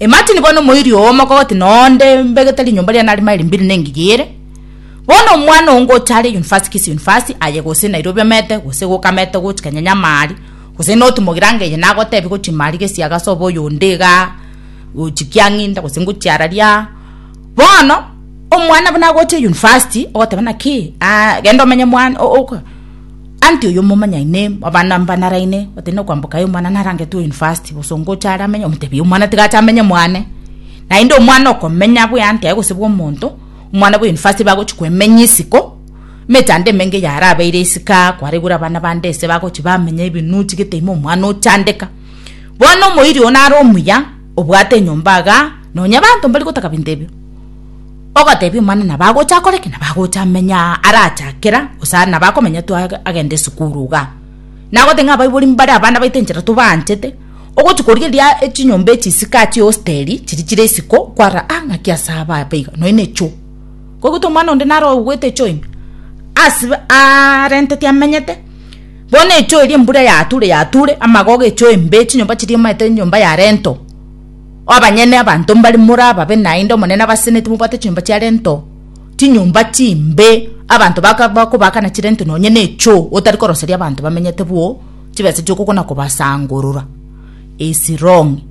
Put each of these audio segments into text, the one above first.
Imagine bono omoiri oo omokogoti na onde mbegete rinyomba riane are maili mbiri na engiya ere. Bono omwana oo ngocha are university kisi university aye gose Nairobi omete gose goka amete gochi Kenya nyamari gose not mogiranga eye nagotebi gochi mari gesi iga ase obo oyo onde igaa gochi kiang'inda gose ngochi araria. Bono omwana buna agocha university ogoteba naki genda omenye mwana oka. Anti oyo momanyai ne abana mbanaraine batari nokwamboka aye omwana narangetwe university gose ongocha are amenye omotebi omwana tiga ache amenye mwane naende omwana okomenya bwe anti aye gose bwe omonto omwana bwe university bagochi kwemenya isiko emechando emenge yarabeire isiko aa kwaregure abana bande ase bagochi bamenya ebinoo ochigete ime omwana ochandeka bono omoiri oyo nare omuya obwate enyomba igaa nonya abanto mbarigotaka binto ebio. Ogotebi omwana nabo agocha akore ki? Nabo agocha menya arache akera gose aria nabo akomenya tu agende esukuru igaa. Nagote ng'a abaibori mbare abana baito enchera tobaanchete, ogochi korigeria echinyomba echi isiko aa chihosteri chiri chire isiko kwarora aa ng'aki ase aba aba iga nonya nechoo. Koigwete omwana onde naro oigwete echoo ime as arenteti amenyete bono echoo eria embura yature yature amagogo echoo embe chinyomba chiria omanyete nyomba ya rento. Abanyene abanto mbare morababe naende Omonene abaseneti mobwate chinyomba chia rento, chinyomba chimbe, abanto bakobaakana chirento nonye necho otari koroseria abanto bamenyete bwo chibesa chi'okogwa na kobasangorora. Esirong'i.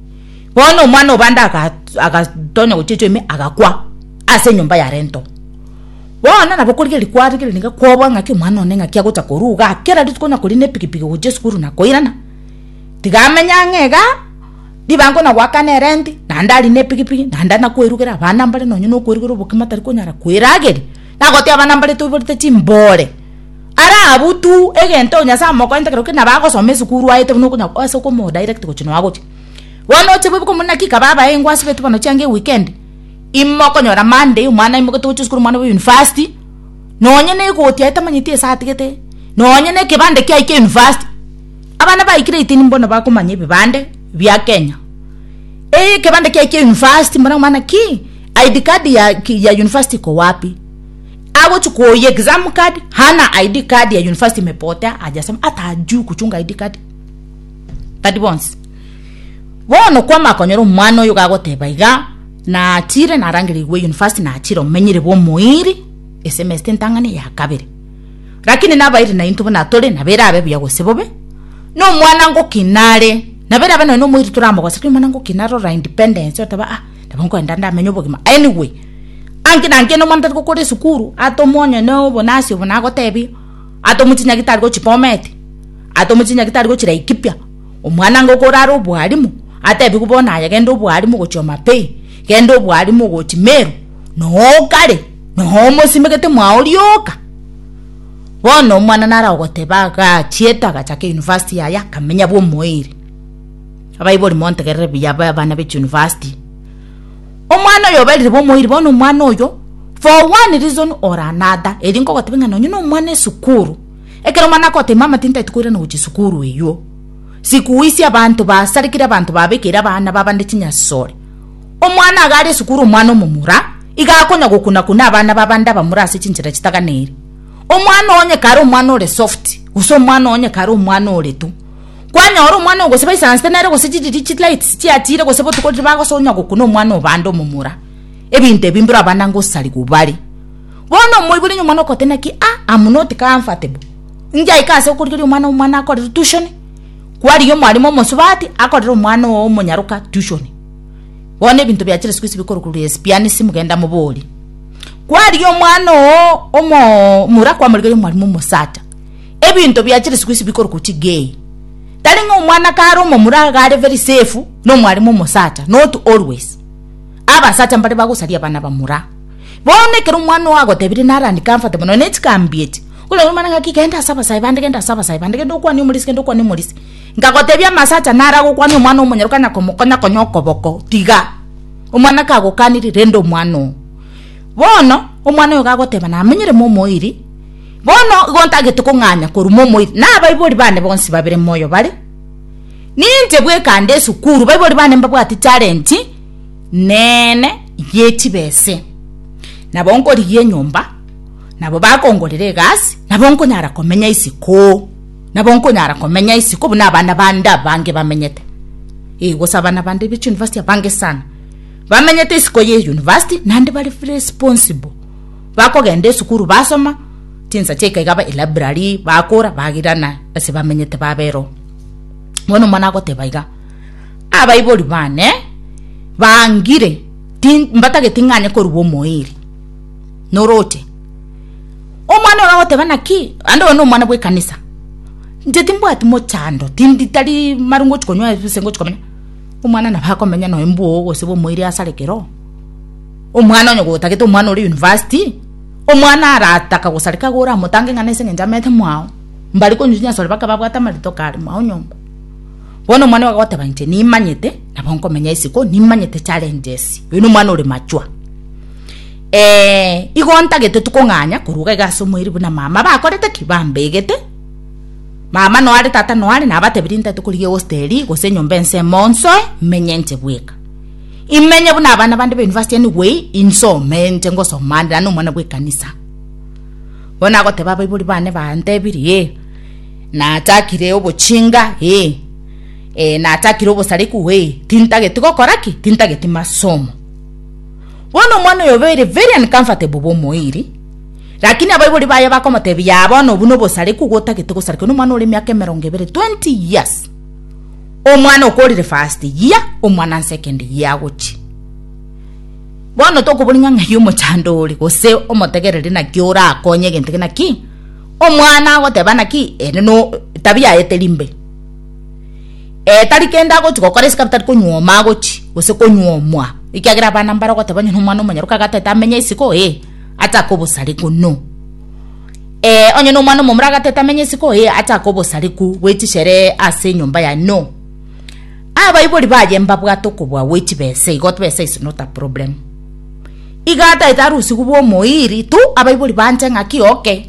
Bono omwana o bande agatonya gochia echoa ime agakwa ase enyomba ya rento. Bono nabo korigereria kwarigeria niga kobua ng'aki omwana one ng'aki agocha korwa igaa kera rituko onya koria nepikipiki gochia esukuru na koirana tiga amenye ang'e igaa. ribango na goakana erenti, naende ari nepigipigi, naende nakwerugera abana mbare nonye nokwerugera obokima tari konyara kwerageria, nagotia abana mbare toiborete chimbore. Are abwo tu egento Nyasaye amokoente ekero kende nabo agosoma esukuru aete buna okonya ase okomodirect gochia nonya gochia. Bono oche boibuke omonyene naki kaba abae ingo asibeti bono chianga eweekend, imokonyora Monday omwana aimoketie gochia esukuru omwana bwa university, nonye negoti aye tamanyeti ase atigete, nonye nekebande kiaye kia university. Abana baikire eitini mbono bakomanya ebibande bia Kenya. Ee, ekebande kiaye kia university mbona omwana ki ID card ya, ya university ko wapi? Agochi kuoya exam card hana ID card ya university mepotea ajasema hata ajui kuchunga ID card. Tadi bonsi. Bono kwama konyora omwana oyo gagoteba iga na achire narangire igwe university na achire omenyire bomoiri esemester entang'ani ya kabere. Lakini nabaeire naintwe buna tore, nabo erabe buya gose bobe. Nomwanangoki nare, nabo erabe nonya nomoiri toramogosa, lakini omwanangoki nare orora independence oteba ah nabo nkoenda ndamenye obogima. Anyway, anki na anki onye omwana tari gokora esukuru, atomwa onye na obonasi obo nagotebie, atomwe chinyagi tari gochia Bomet, atomwe chinyagi tari gochia Laikipia, omwanangoki orare obwalimu, atebiwe bono aye genda obwalimu gochia Homa Bay, genda obwalimu gochia Meru, nooo kare. Nomosimegete mwao rioka. Bono omwana nare ogoteba agachiete agachaka university yaye akamenya bw'omoerio. Abaibori montegerere buya abana be chiuniversity. Omwana oyo oberire bw'omoerio bono omwana oyo for one reason or another eri nkogotebia ng'a nonye nomwana esukuru ekero omwana agogotebi mama tintaeti koirana gochia sukuru eywo sikuisi abanto basarekire abanto babekeire abana b'abande chinyasore. Omwana iga are esukuru omwana omomura, iga akonya gokuna-kuna abana b'abande abamura ase chinchera chitaganeiri. Omwana oo onye kare omwana ore soft, gose omwana oo onye kare omwana ore tu. Kwanyora omwana oyo gose baisansete nere gose chiriria chilights chiachire gose botuko riria bagosoa onya gokuna omwana oo bande omomura. Ebinto ebi mbiro abana ngosariwa bare. Bono omoibori onye omwana okote naki ah am not comfortable, ngiaike ase okorigeria omwana omwana akorerwe tution, kwarigia omwarimu omosubati akorere omwana oo omonyaroka tution. Bono ebinto bia chire isiko isi bikorukururia esipianisi, mogende mobori, Kwarigia omwana oo omomura kwamorigeria omwalimu omosacha. Ebinto bia chire isiko isi bikorukururia chigei. Tari ng'a omwana kare omomura iga are very safe na omwalimu omosacha, not always. Abasacha mbare bagosaria abana bamura. Bono ekero omwana oo agotebirie naro uncomfortable mono, nonya ne chikambi echi, okoragia omwana ng'aki genda ase abasae bande, genda ase abasae bande, genda okwane omorisia, genda okwane omorisia. Nkagotebia, Amasacha nara gokwania omwana omonyaroke na komokonya konya okoboko, tiga. Omwana kagokanirie, rende omwana oo. Bono omwana oyo gagoteba, Namenyire momoiri, bono igo ntagete kong'anya korwa momoiri, na abaibori bane bonsi babere moyo bare. Ninche bweka nde esukuru, baibori bane mbabwatie challenge nene yechibese. Nabo nkorigia enyomba, nabo bakongorera egasi, nabo nkonyara komenya isiko. Nabo nkonyara komenya isiko buna abana bande abange bamenyete. Ee, gose abana bande b'echiyunivasiti abange sana bamenyete isiko y'eyunivasiti naende bare responsible. Bakogenda esukuru basoma chinsa chia ikaiga ba elibrary bakora bagirana ase bamenyete babera oo. Bono omwana agoteba iga, abaibori bane bangire mbatageti ng'anye korua omoeri. Noroche? Omwana oyo agoteba naki? Naende oyo nomwana bw'ekanisa. Inche timbwati mochando, tindi tari mari ngochi konywa gose ngochi komenya. Omwana nabo akomenya noyo mbwogo gose bomoire ase are kero. Omwana onye gotagete omwana ore university, omwana arataka gosareka iga oramotange ng'a nase eng'encho amete mwao, mbare konywa chinyasore baka babwate amarito kare mwao nyomba. Bono omwana oyo agoteba inche nimanyete nabo nkomenya isiko, nimanyete challenges. Oyo nomwana ore mature. Ee, igo ntagete tikong'anya koruga iga ase omoiri buna mama bakorete ki bambegete mama noare tata noare nabatebirie ntate korigia egosteri gose enyomba ense monsoe menye nche bweka imenye buna abana bande ba university anyway insome nche ngosoma ande nano omwana bwekanisa bono agoteba abaibori bane bantebirie e nachakire obochinga e e nachakire obosariku e tintageti gokora ki tintageti masomo Bono omwana oyo obeire very uncomfortable bw'omoiri, lakini abaibori baye bakomotebia, Yaa bono obwo nobosarekwa igo otagete gosarekwa nomwana ore emiaka emerongo ebere, 20 years, omwana okorire first year, omwana second year agochia. Bono tokoboria ng'a ng'ai omochando ore gose omotegereri naki orakonye egento ekeria, naki omwana agoteba naki ere no etabia yaye teri mbe. Ee tari kende agochi gokora isiko tari konywa omo agochi gose konywa omwa ekiagera abana mbare ogoteba onye nomwana omonyene roka agatete amenye isiko ee achake obosareku no. Ee onye nomwana omomura agatete amenye isiko ee achake obosareku bwe chisheree ase enyomba yaye no. Abaibori baye mbabwate okobua gwe chibesa igo chibesa is not a problem. Iga ataete arusigwe bwa omoiri tu abaibori banche ng'aki okay.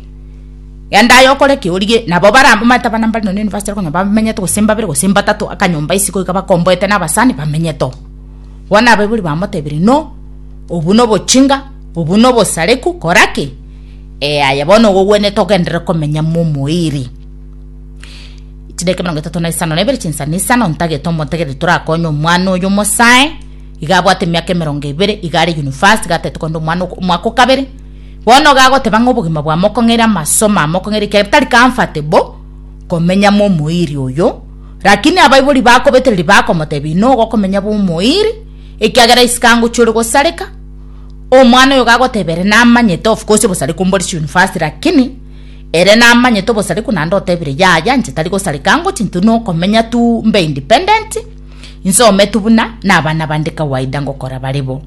Genda aye okore eke origie. Nabo bare abwo omanyete abana mbare nonya university konya bamenyete gose mbabere gose mbatato akanyomba ase goika bakomboete na abasani bamenyete oo. Bono abaibori bamotebire no obwo no obochinga obwo no obosareku kora ki? Ee aye bono nigo ogwenerete ogenderere komenya mo omoiri. Chidakika emerongo etato na isano na ibere chinsani isano ntagete omotegereri torakonye omwana oyo omosae iga abwate emiaka emerongo ebere iga are university iga atagete kogenda omwana omwaka okabere. Bono iga agoteba ng'a obogima bwao mokong'eire amaso mao mokong'eire ekiagera tari comfort bo komenya momoiri oyo, lakini abaibori bakobetereria bakomotebia inwe igo okomenya bw'omoiri ekiagera isiko angochia ore gosareka, omwana oyo iga agoteba ere namanyete of course obosareko mbore chiuniversity lakini ere namanyete obosareku naende otebire yaya inche tari gosareka angochie intwe nokomenya tu mbe independent, insome tu buna na abana bande kawaida ngokora bare bo.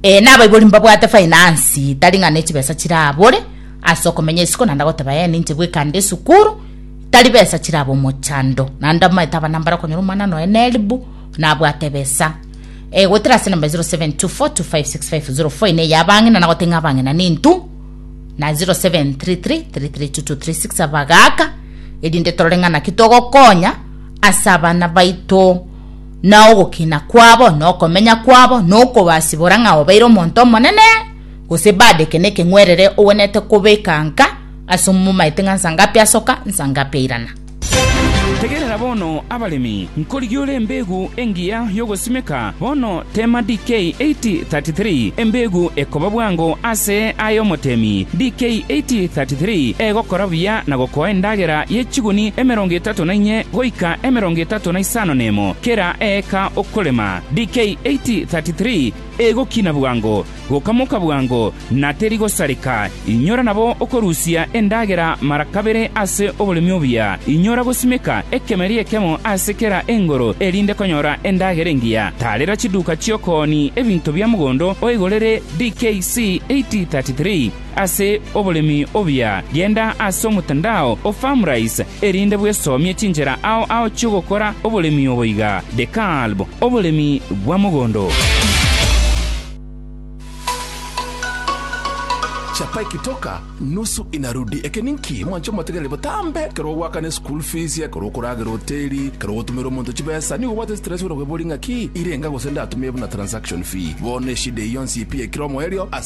Ee, nabaibori mbabwate finance tari ng'a nechibesa chirabore ase okomenya isiko naende goteba ee ninche bwekande esukuru tari besa chiraba omochando naende amaete abana mbare okonyora omwana noe neribu nabwate ebesa ee goetera ase enamba 0724256504 ene eya abang'ina nagote ng'a abang'ina nintu na 0733332236 abagaka erinde torore ng'a naki togokonya ase abana baito na ogokina kwabo, na okomenya kwabo, na okobasibora ng'a obaire omonto omonene, gose baadeke nekeng'werere ogwenerete kobeka nka ase omomaete ng'a nsangapi asoka, nsangapi airana. Tegerera bono, abaremi, nkorigia ore embeegu engiya y'ogosimeka bono teema DK 8:33, embeegu ekoba bwango ase aye omotemi, DK 8:33, egokora buya na gokoa endagera ye chiguni emerongo etato. etato na inye goika emerongo etato na isano nemo kera eeka okorema, DK 8:33 Egokina bwango, gokamoka bwango, na teri gosareka, inyora nabo okorusia endagera mara kabere ase oboremi obuya, inyora gosimeka ekemeri ekemo ase kera engoro erinde konyora endagera engiya, tarera chiduka chi'okooni ebinto bia mogondo oigorere, DK C 8:33. Ase oboremi obuya, genda ase omotandao o Farmrise erinde bwesomie chinchera ao ao chi'ogokora oboremi obo iga, The Kalb, Oboremi bwa mogondo. Chapa ekitoka nusu inarudi. Eke ninki? Mwanche omotegereri botambe ekero ogoakana eschool fees, ekero okoragera hoteli, ekero ogotumera omonto chibesa. Nigo obwate stress buna okwebori ng'aki? Irenga gose ndatumie buna transaction fee. Bono eshida eyio yonsi pi ekire omoerio ase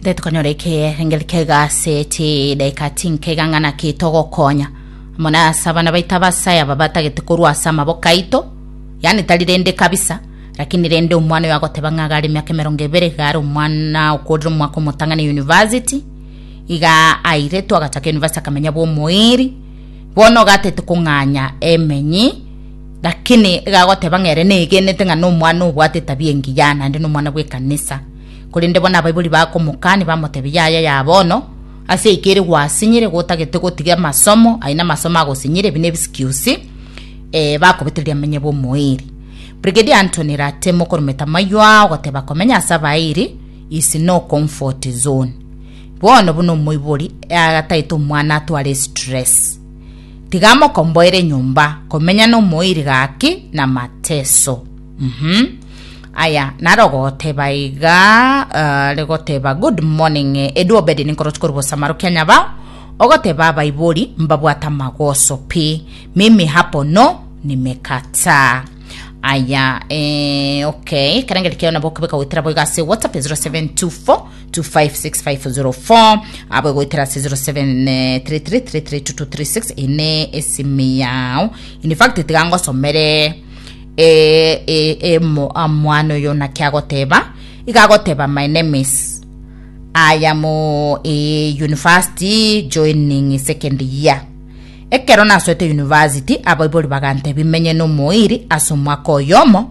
Nde tukanyora ekerengeri kegaseti edaika tinkega ng'ana kitogokonya muna ase abana baito abasae aba batagete korwa ase amaboko aito yani tari rende kabisa lakini rende omwana oyo agoteba ng'a gare emiaka emerongo ebere gare omwana okorire omwaka omotang'ani university iga airetwe agachaka university akamenya bwa omoiri bono gatete kong'anya emenyi Lakini iga agoteba ng'a ere negenete ng'a nomwana obwate etabia engiya, naende nomwana bw'ekanisa. Korende bono abaibori bakomokania, bamotebia, Yaya ya bono, ase eike ere gwasinyire, igo otagete gotiga amasomo, aye namasomo agosinyire, ebi n'ebisikusi, ee, bakobetereria amenye bw'omoeeri. Brigadier Anthony Rate, mokorometa amayio aa, ogoteba, Komenya ase abaeeri is no comfort zone. Bono buna omoibori, ee, agataete omwana atware stress. Tiga mokomboere nyomba komenya nomoiri gaki na mateso. Mhm. Aya, naro goteba iga, uh, rigoteba, good morning, eh, edu obedi ninkorochi korwa bosamaro kia nyabao, ogoteba abaibori mbabwate amagoso pi, mimi hapo no, nimekataa. Aya, eh, okay, ekerengeri keo nabo okebeka goetera boigo ase WhatsApp 0724 256504 abwe goetera 0733332236 ine esimi yao in fact tiga ngosomere eh, eh, eh, mo- ah, mwana oyo naki agoteba iga agoteba my name is I am uh, eh, university joining second year ekero nasoete university abaibori bagantebi menye nomoiri ase omwaka oyomo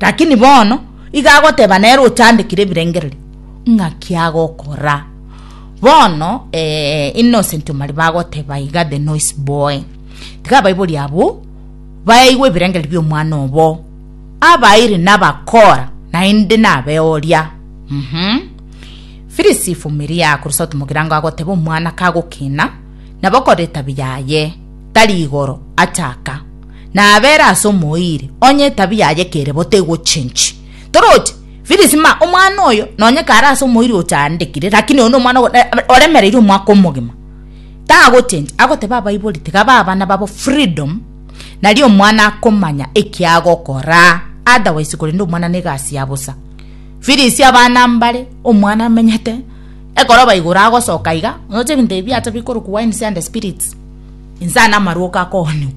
Lakini bono iga agoteba nere ochandekire ebirengererio ng'a ki agokora. Bono eh, Innocent Omari bagoteba iga the noise boy. Tiga abaibori abwo baigwe ebirengererio bi'omwana obo. Abairi nabakora naende nabe oria. Mhm. Phyllis Ifumiria korwa South Mogirango agoteba omwana kagokina nabo koreta biyaye tari igoro achaka Nabere ase omoiri, onye etabia yaye kere bo tegochenchi. Toroche, Phyllis ma, omwana oyo, nonye kare ase omoiri ochaandekire, lakini oyo nomwana ogo, eh, oremereire omwaka omogima. Tagochenchi, agoteba abaibori tiga bae abana babo freedom, nario omwana akomanya eki agokora, otherwise korende omwana negasi ya bosa. Phyllis abana mbare, omwana amenyete, ekoroba igoro agosoka iga, oche ebinto ebi biacha bikorokwa wines and spirits. Inse ane amarwoko akoonigwa.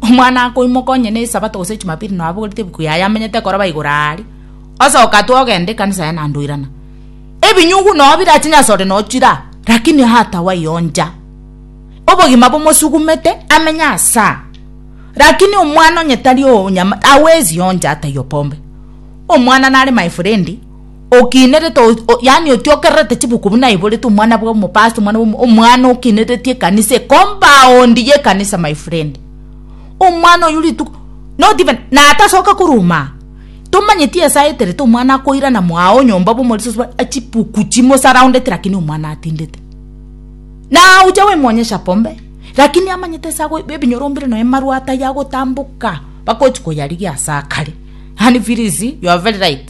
Omwana akoimoka onye ne Esabato gose Echumapiri nonya abogorete ebuku yaye amenyete koroba igoro aare. Osoka atue ogenda ekanisa yaye naende oirana. Ebinyugu nonya bire chinyasore nonya chira lakini atawa yoncha. Obogima bomosugumete amenye asa. Lakini omwana onye tari onyama awezi yoncha ataiyo pombe. Omwana nare my frendi. okinerete o yaani otiokererete chibuku buna aiborete omwana bwa omopasta omwana bwa omwana okinereti ekanisa ecompaund ya ekanisa my friend omwana oyo rituko not even natasoka korwa aa tomanyeti esaa eterete omwana akoirana mwago nyomba bwa omorisia osubare achibuku chimosaroundete lakini omwana atindete na ocha goimwonyesha pombe lakini amanyete ase ago ebi ebinyoro mbire nonye marwa atayagotamboka bakochi koyarigia ase akare yaani firizi you are very right.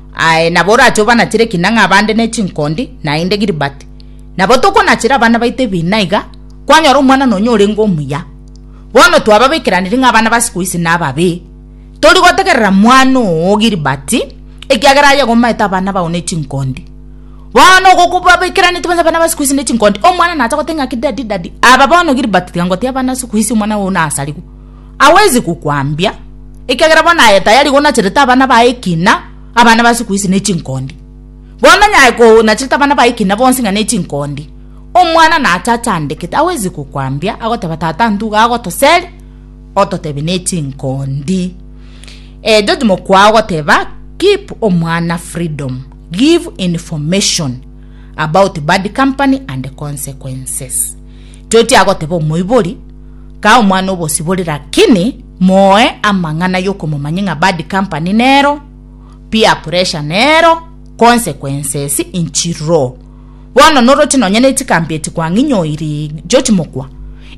Aye nabo orache obanachere ekina ng'a abande ne chinkondi, naende Gilbert. Nabo tokonachera abana baito ebina iga, kwanyora omwanano onye orenge omuya. Bono twababekeraniri ng'a abana ba siku ici nababe. Tori gotegerera mwana oo Gilbert, ekiagera aye gomaete abana bao ne chinkondi. Bono ogo kobabekeraneti bonsi abana ba siku ici ne chinkondi, omwana nacha goteba ng'a ki daddy, daddy. Aba bono Gilbert tiga ngotiga abana siku ici omwana oo nasarigwe. awezi gokwambia, ekiagera bono aye tayari gonacherete abana baye ekina, abana ba siku hizi ne chinkondi. Bono onye aye konacherete abana baye ekina bonsi ng'a ne chinkondi, omwana nache achandekete, awezi gokwambia, agoteba, Tata intwe iga agotoseri, ototebie ne chinkondi. Eh, George Mokwao ogoteba, Keep omwana freedom, give information about bad company and consequences. Toetia goteba omoibori, Kaa omwana obosibore lakini moe amang'ana yokomomanyia ng'a bad company nero, peer pressure nero, consequences nchirro. Bono noroche nonya nechikambi echi kwang'inyoiri chiochimokwa,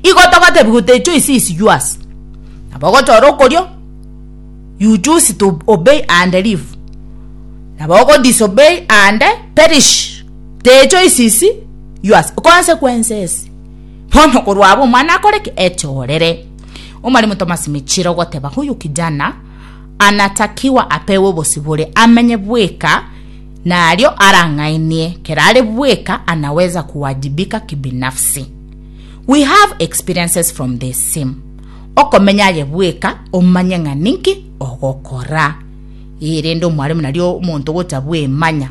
igo togotebi go the choice is yours. Nabo ogochora okorio, you choose to obey and live. Nabo ogo disobey and perish. The choices yours. Consequences. Bono korwa abo omwana akore ki? Echorere. Omwalimu Thomas Michira ogoteba huyu kijana anatakiwa apewe obosibore amenye bweka nario arang'ainie kera are bweka anaweza kuwajibika kibinafsi. We have experiences from the same. Okomenya aye bweka omanye ng'a ninki ogokora. Ee rende omwalimu nario omonto gocha bwemanya.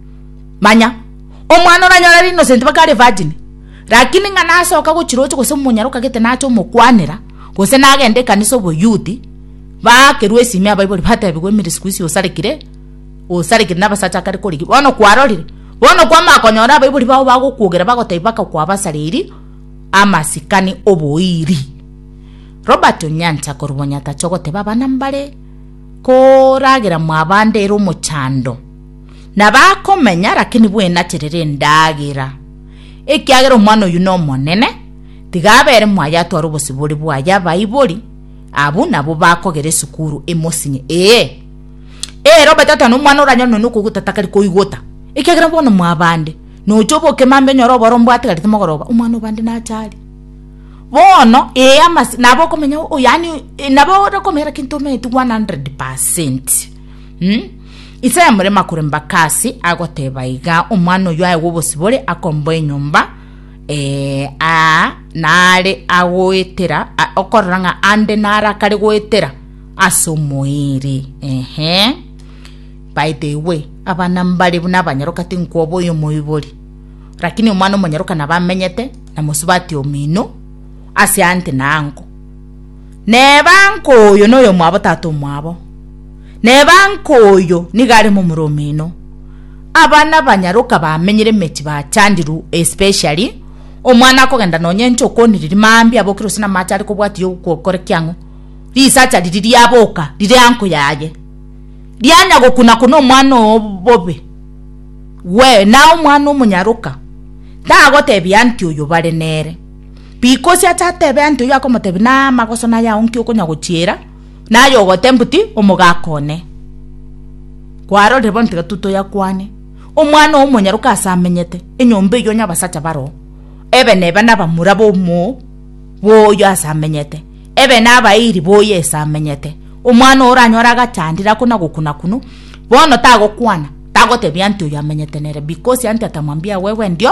Manya, omwana oranyore are innocent mpaka are virgin, lakini ng'a nasoka gochiroche gose omonyara okagete nache omokwanera, gose nagenda ekanisa oboyouth, baakerwa esimi abaibori batebigwa emeri siku hizi osarekire, osarekire na abasacha akare korigia. Bono kwarorire? Bono kwamanya konyora abaibori bao bagokwogera bagotebi baka kwabasareiri amasikani oboiri. Robert Onyancha korwa Bonyatacha ogoteba abana mbare koragera mwabande ere omochando. na bakomenya, lakini bwenacherere endagera, ekiagera omwana oyio nomonene, tiga abere mwaye atware obosibore bwaye abaibori abwo nabwo bakogera esukuru emosinye, ee, ere obatata nomwana oranyore nonya okoigota takari koigota, ekiagera bono mwabande, nocha oboke mambi onyore oboro mbwatigarete mogoroba, omwana obande nacha aria. Bono ee amase nabo okomenya yaani nabo ore komenya lakini tomeeti 100%. Hmm? Isaya more makore mbakasi agoteba iga omwana oyo aye wobosibore akomboa enyomba eh, a nare agoetera okorora ng'a ande nare akare goetera ase omoiri ehe by the way abana mbare buna abanyaroka tinkwoba oyo moibori lakini omwana omonyaroka nabamenyete na mosubati omino ase ante nango Neba nkoyo noyomwabo tata omwabo, neba nkoyo nigo aremo omoro omino. Abana banyaroka bamenyire emechi bachandiru especially omwana akogenda nonye inche okoniriri mambia abokire gose namache are kobwatiyo gokore kiang'o risacha riri riaboka rire anko yaye rianya gokuna kuna omwana oo bobe we naye omwana omonyaroka tagotebia anti oyo bare nere. Bikosi ache atebe anto oyio akomotebia namagoso naye ao nki okonya gochiera naye ogoteba boti omogaka one kwarorire bono tiga tu toyakwane omwana omonyaroka ase amenyete enyomba eyio onye abasacha baroo ebe neba nabamura bomo boyio ase amenyete ebe nabairi boyio ase amenyete omwana oo oranyore agachandire ako nagokuna kunu bono tagokwana tagotebia anto oyio amenyete nere bikosi anto atamwambia wewe ndio.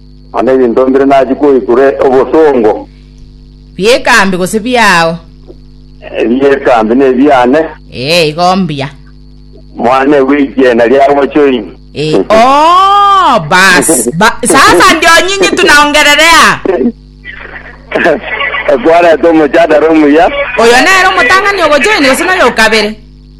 Mana ebinto mbire nachie koikure obosongo. Bi'ekambi gose biao? Ebi'ekambi nebiane. Ee, igo mbuya. Mwane gw'ekiena ria bochori. Ee, oo, bas, ba, sasa ndio nyinyi tunaongererea. Ekwarete omochadara omuya. Oyo nere omotang'ani ogochoini gose noyokabere?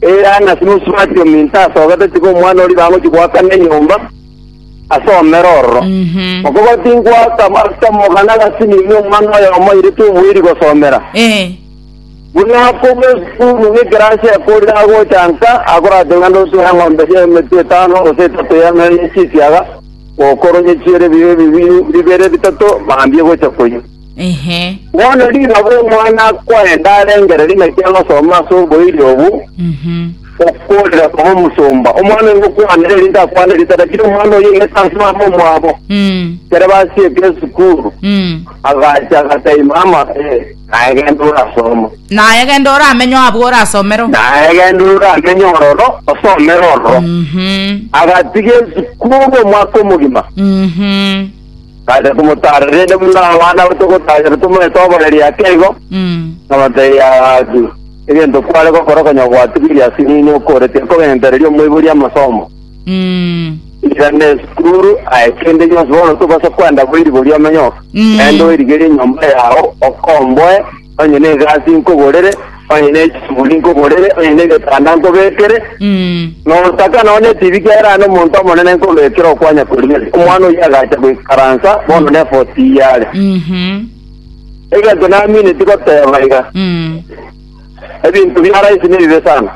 Elana Simusubati ominto ase ogato tiga omwana oria bagochia goakana enyomba ase omera ororo. Okobua tingoaka ase omogana gati nigo omwana oyomo oirete oboiri gosomera. Eh. Buna akobua esukuru ng'ekerasi ekorire agocha nka akorate ng'a nusu y'eng'ombe eria y'emetwe etano gose etato y'emeri ye chisiaga, gokoronye chiere bibe bibiri bibere bitato mambia egocha koyia. Inche. Bono riroba Omwana-kwaye ndarengereria naki agosoma ase oboiri obwo, okoorera koba omosomba, omwana oyo ngokwanera erinde akwane ritana, kira omwana oyio oigete ase mama omwabo. Ekero basiete esukuru, agacha agatai mama, ee, naye genda orasoma. Naye genda oramenywa abwo orasomero. Naye genda oramenye ororo, osomere ororo. Agatiga esukuru omwaka omogima. Bacha komotaara, rende buna abana togotaarire tomoete oboreri ake igo, nabatebia, Gaki, egento kware gokora konya gwatigirie ase inwe okoretia kogentereria omoiboria amasomo. Irana esukuru, aye kende gionsi, bono tobasa kwenda boiri boria omenyoka, rende oirigerie enyomba yao, okomboe, Onye n'egasi nkogorere, onye ne chisuguri nkogorere, onye n'egetanda nkobekere, notaka nonya netibi kiagera aye nomonto omonene nkobekera okwanya koriere. Omwana oyio agacha goikaransa bono nefoti eye are. Egento naminetie goteba iga, ebinto bia rahisi nebibe sana,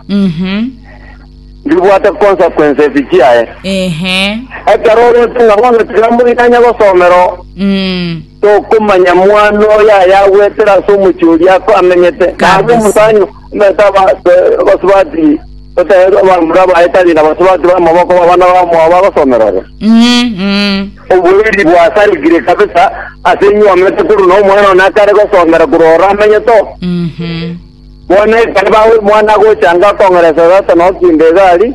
mbibwate consequences chiaye. Ekero orente ng'a bono tiga mbuya nanye gosomera oo. Tokomanya mwana oyo ayagwetere ase omochie oria ako amenyete, na abe omosanyi omete abasubati otebe abamura baye tari nabasubati b'amaboko b'abana bamwabo bagosomera ororo. Oboiri bwasarigire kabisa ase inwe omete korwa na omwana one akare gosomera korwa ororo amenyete oo. Bono ekero bago- omwana agocha anga akong'eresa tata nokinde iga aria,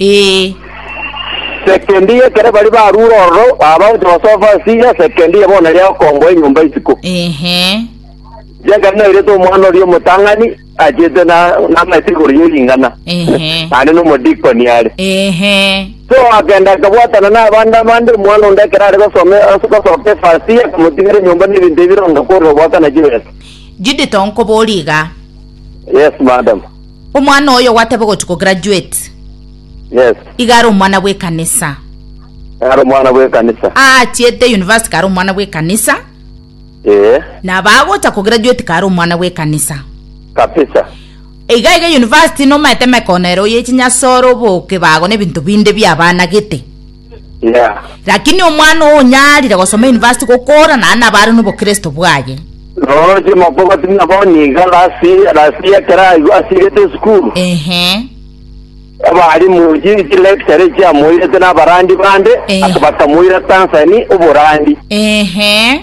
Ee. Sekendi y'ekere baria barure ororo, abanto basoa fasi ya sekendi ya bono eria okongoa enyomba isiko. Ehe. Riakare nairete omwana oria omotang'ani, achete na namaete igoro ye ring'ana, Ehe. naende nomodikoni are. Ehe. So akagenda akabwatana n'abande abande, omwana onde ekero are gosome ase gosoka efasi ye, akamotigera enyomba na ebinto ebironda korwa obwaka na chibesa. Judith onkoboria iga. Yes, madam. Omwana oyo gwateba ogochi ko graduate. Yes. Iga are omwana bwe kanisa. Are omwana bwe kanisa. Aachete university kare omwana bwe kanisa. Ee. Na bagocha ko graduate kare omwana bwe kanisa. Kapisa. Iga iga university nomaete mekonero yechinyasoro boke bago ne bintu binde bia bana gete. Lakini omwana oyo onyarire gosoma university gokora naende nabare nobokristo bwaye. Roche mokobati buna bono iga last year last year ekero aigwa asirete esukuru Ehe. abarimu chi- chilecture chiamoirete nabarandi bande Ehe. ase bakamoira Tanzania oborandi Ehe.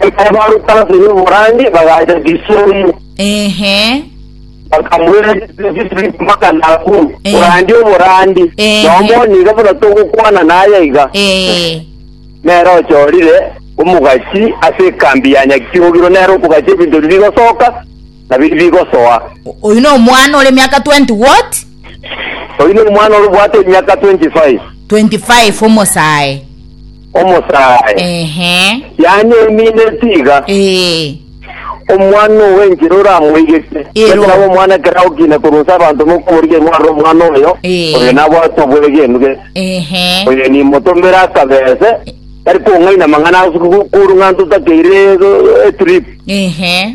Ekero baruete ase y'oborange bagacha Gisori, Ehe. bakamoira Gisori mpaka Nakuru, Eh. korande oborandi. Eh. Na omonto nigo buna togokwana naye iga. Eh. Nere ochorire omogachi ase ekambi ya Nyakiogiro, nere okogacha ebinto biri bigosoka na biri bigosoa. O- Oyu no omwana ore miaka 20 what? Oyu ni omwana orobwate emiaka 25. 25 omosae. Omosae, Ehe. yanyemineti iga, Ee. omwana owe enchera oramoigete. Ero. Ekero abe omwana ekero agokina korwa nse abanto mokoboria imwarire omwana oyo, Ee. oyo nabwate obwegenu gete. Ehe. Oyo nimotomere akabese, tari kong'aina amang'ana ase koru ng'a ntotakeire eh, etrip. Ehe.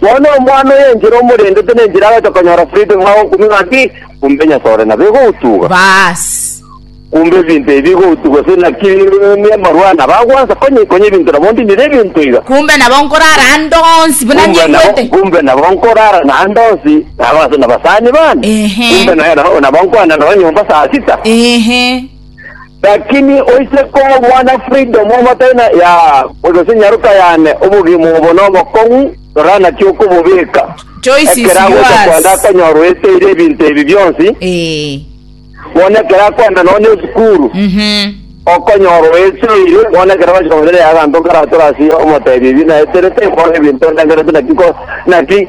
Bono omwana oyo enchera omorendete nenchera agocha konyora Filipi ng'a okumia ng'a ki? Kumbe Nyasae ore nabo igoutuga? Baas. Kumbe ebinto ebi bigoutuga gose naki emarwana bagwansa? Konya konya ebinto nabo ndinire ebinto iga. Kumbe nabo nkorara ande onsi buna Kumbe nabo, nikwete. kumbe nabo nkorara naende onsi nabaase nabasani bane. Ehe. Kumbe naye nabo, nabo nkwana nao nyomba saa sita. Ehe. Lakini oise kobwana freedom omotari na ya gose nyaroka yane obogima obo na obokong'u rora naki okobobeka Choice is ekero agocha yours. kwenda akonyora oeteire ebinto ebi bionsi Eh. bono ekero akwenda nonye esukuru Mhm. okonyora oeteire bono ekero bachika kong'ina yaga nto nkaratora ase omotebi ebi naeterete bono ebinto ndengerete naki ko naki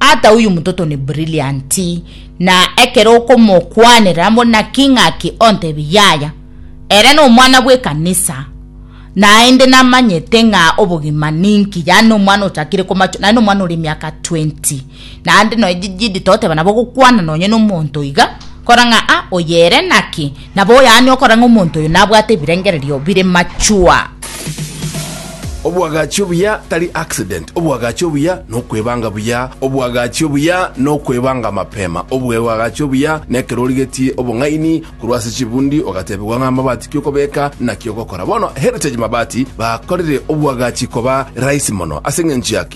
Ata oyo omototo ne brilliant, na ekero okomokwanera buna king'aki ontebie yaya, ere nomwana bw'ekanisa, naende namanyete ng'a obogima ninki, yaani nomwana ochakire komachwa, naende nomwana ore emiaka 20, naende nonya jidi toteba nabo ogokwana nonya nomonto iga, kora ng'a ah oye ere naki, Nabo oyane okora ng'a omonto oyo nabwate ebirengererio bire mature. Obwagachi obuya tari accident, obwagachi obuya nokwebanga buya, obwagachi obuya nokwebanga mapema, obwewagachi obuya nekero origetie obong'aini korwa ase chibundi ogatebigwa ng'a amabati ki okobeka naki ogokora. Bono Heritage Mabati bakorire obwagachi koba rahisi mono ase eng'encho ya ki?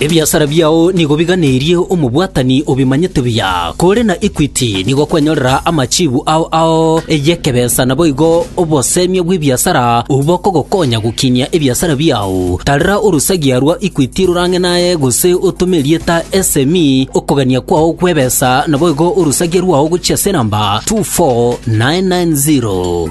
Ebiasara biao nigo biganeirie omobwatani obimanyete buya, kore na Equity nigo kwenyorera amachibu ao ao y'ekebesa naboigo obosemia bw'ebiasara obwo bokogokonya gokinyia ebiasara biao. Tarera orosagia rwa Equity rorang'e naye gose otome erieta SME okogania kwao gw'ebesa naboigo orosagia rwao gochia ase enamba 24990.